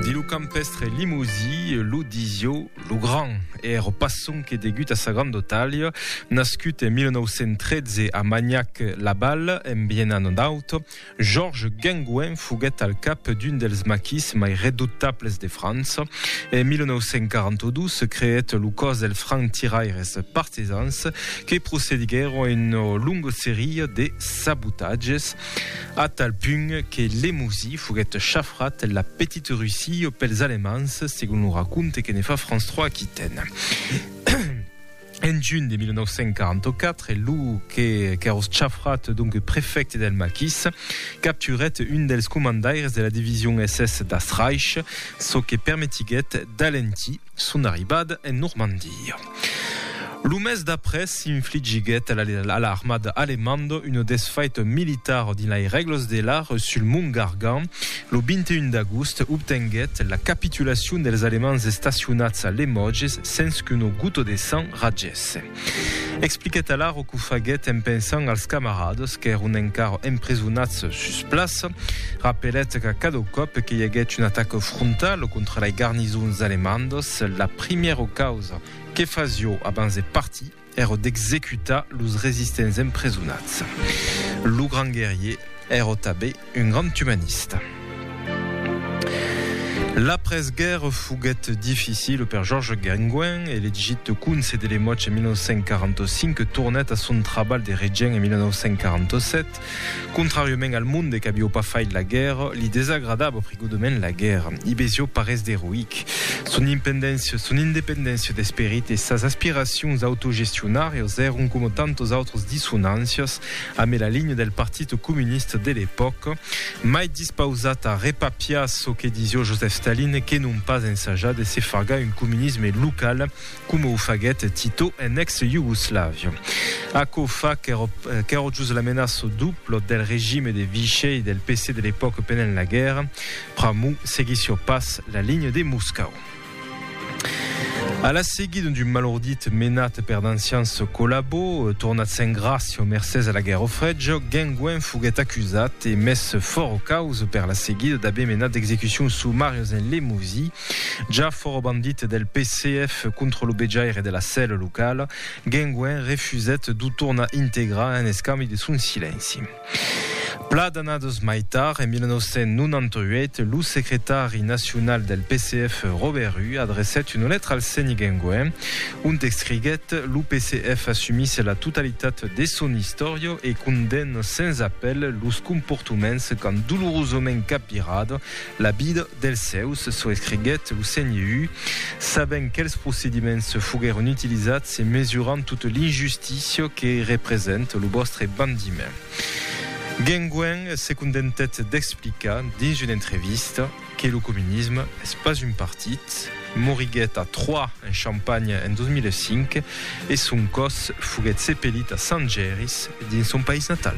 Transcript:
Di lo campèstre limosí, lo Disiò lo Grand, èra pas sonque degut a sa grandotàlia. Nascut en 1913 a Magnac-Laval, en Biennanant-Aut, Georges Guingouin foguèt al cap d'un dels maquis mai redutables de França. En 1942 se creèt lo còs dels franc-tiraires partisans que procediguèron a una longa seria de sabotatges. A tal punt que Lemouzy foguèt chafrat la Petite Russie pels Alemands, segon lo raconte que ne fa France 3 Aquitaine. En junh de 1944, lo que qu'èros chafrat, donc prefècte del Maquis, capturèt un dels comandaires de la division SS d'Astreich, çò que permetiguèt d'alentir son arribada en Normandia. Lo mes d'après s'infligiguèt a l'armada alemanda una desfaita militara dins lai règlas de l'art sul mont Gargan. Lo 21 d'agost obtenguèt la capitulacion dels Alemands estacionats a Lemoges sens qu'una gota de sang ragèsse. Expliquèt alara qu'o faguèt en pensant als camaradas qu'èron encara empresonats sus plaça. Rapelèt qu'a cada còp que i aguèt un ataca frontala contra lai garnisons alemandas, la primièro causa que fasió abans de partir èro d'executar los resistents empresonats. Lo grand guerrier èro tabé un grand umanista. L'après-guèrra foguèt dificila per Georges Guingouin, elegit conse de Lemoch en 1945, tornèt a son trabalh de regent en 1947, Contràriament al monde qu'avió pas fait la guèrra, li desagradava prigodament la guèrra. I vesió pas res d'eroïc. Son impendéncia, son independéncia d'esperit e sas aspiracions autogestionàrias èron coma tantas autras dissonàncias amé la linha del Partit Comunista de l'epòca, mai dispausat a repapiar çò que disió Joseph Stalin que non pas ensajar de se fargar un comunisme local coma o faguèt Tito en ex-Iugoslavia. Aquò fa qu'èra just la menaça dupla del regime de Vichy e del PC de l'epòca pendent la guèrra, pr'amor seguissiá pas la linha de Moscau. A la seguida d'un malordit menat per d'ancians collabos, tornats en gràcia mercés a la Guèrra Freja, Guengouin foguèt acusat e mes fòra causa per la seguida d'aver menat d'execucions sumàrias en Lemosie, Jar fòro bandit del PCF contra lo bejaire de la cèl locala, Guengüen refusèt d'o tornar integrar en escambi de son silenci. Pla d'annadas mai tard, en 1998, lo secretari nacional del PCF Robert Rue adrecèt una letra al seni Guengüen, ont escriguèt, Lo PCF assumís la totalitat de son istòria e condemna sens apèl los comportoments qu'an dolorosament capvirat La vida dels sèus, çò escriguèt lo CNU, sabent quels procediments foguèron utilizats e mesurant tota l'injustícia que representa lo vòstre bandiment. Guenguèn se contentèt d'explicar, dins una entrevista, que lo comunisme es pas un partit, moriguèt a Troyes, en Champagne, en 2005 e son còs foguèt sepelit a Sant Jèris, dins son país natal.